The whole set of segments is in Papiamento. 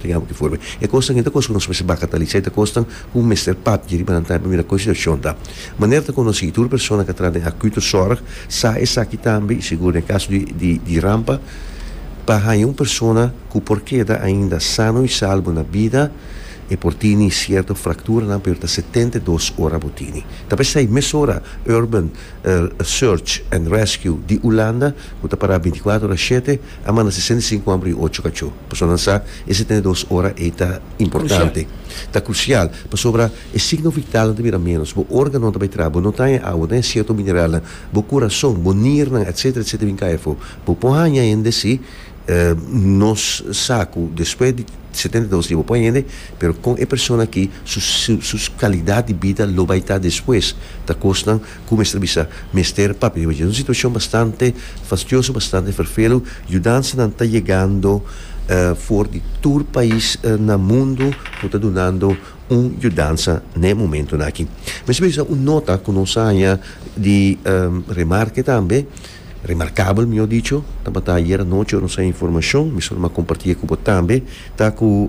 Tengaba ki forma e kosnan i ta kos ku nos mester baka ta lisa i ta kosnan ku mester papia riba nan tambe pa mira kon situashon ta. Manera ta konosí i tur persona ku a traha den akuto sòrg sa esaki tambe i sigur den e kaso di di rampa pa haña un persona ku por keda ainda sano i salbo na bida e por tini sierto frakturanan pero ta setenta i dos ora bo tini. Ta p'esei mesora Urban Search and Rescue di Ulanda ku ta pará binti kuater ora shete A manda sesenta i sinku hòmber i ocho kachó, pasobra nan sa e setenta i dos ora ei ta importante, ta krusial, pasobra e signo vitalnan ta bira ménos, bo órganonan ta bai traha, bo no ta haña awa, no ta haña sierto mineralnan, bo kurason, bo niernan, etcétera, etcétera bin kai afó. Bo por haña hende sí, nos sa ku despues di setenta i dos dia bo por haña hende, pero kon e persona akí su kalidat di bida lo bai ta despues, ta kosnan. Ku mester bisa? Mester, pape, e un situashon bastante fastioso, bastante ferfelu. Yudansanan ta yegando for di tur pais na mundu ku ta dunando un yudansa n'e momentunan aki. Mester bisa un nota ku nos haña di remarke tambe. Remarkabel, mi a dicho, tabata ayer anochi ora nos a informacion, mi solo mi a comparti e cu bo tambe, ta cu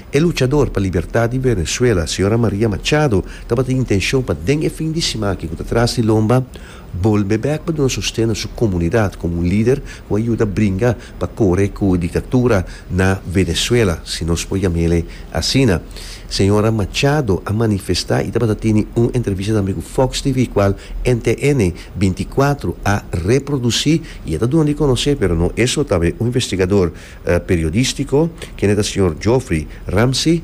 e luchador pa libertad di Venezuela, Sra. Maria Machado, tabata intencion pa den e fin di siman aki cu ta tras di lomba, bolbe bek pa duna sosten na su comunidad como un lider cu a yuda bringa pa core cu e dictatura na Venezuela, si nos por yamele asina. Sra. Machado a manifesta y tabata tene un entrevista tambe cu Fox TV, cual NTN. binticuatro a reproduci y e ta duna di conoce, pero no eso ta be un investigador periodistico, kende ta señor Geoffrey Ramsey,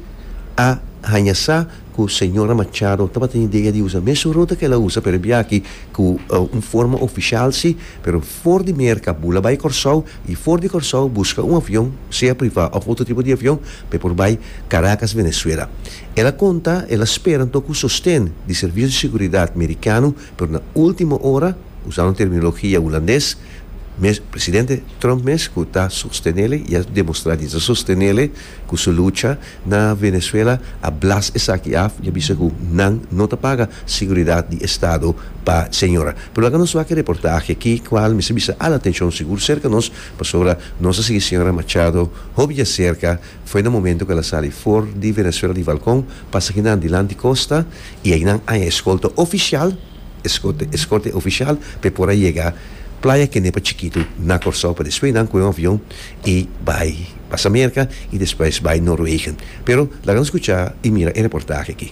a haña sa cu señora Machado tabata idea di usa mesun ruta cu el a usa, pero e biachi cu un forma oficial si, pero for di Merca bu la bay Corsou y for di Corsou busca un avion, sea priva of otro tipo di avion, pa e por bay Caracas, Venezuela. El a conta el a spera anto cu sosten di servicio di seguridad mericano, Pero na ultimo ora, usando terminologia hulandes, mes presidente Trump mes cu ta sostenele y a demostra di ta sostenele cu su lucha na Venezuela a blas esaki af y a bisa cu nan no ta paga seguridad di estado pa señora. Pero laga nos wak e reportahe aki cual mester bisa al atencion sigur cerca nos pasobra nos a sigui señora Machado hopi dja cerca. Foi na momento cu el a sali for di Venezuela di balcon, pasa ki nan dilanti costa y ay nan aña escolta oficial, escorte, escorte oficial, pa e por a yega Playa kende pa Chikitu na Corsou, pa despues nan coge un avion y bay pasa Merca y despues bay Noorwegen. Pero laga nos scucha y mira e reportahe aki.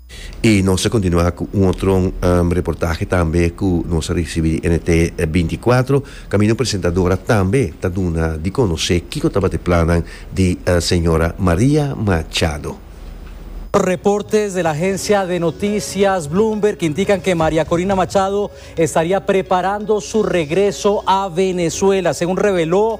Y nos a continua cu un otro reportahe tambe cu nos a ricibi di NT. binticuatro, caminda un presentadora tambe ta duna di conoce kico tabata e plannan di Sra. Maria Machado. Reportes del agencia de noticias Bloomberg indican que Maria Corina Machado estaria preparando su regreso a Venezuela, segun reveló.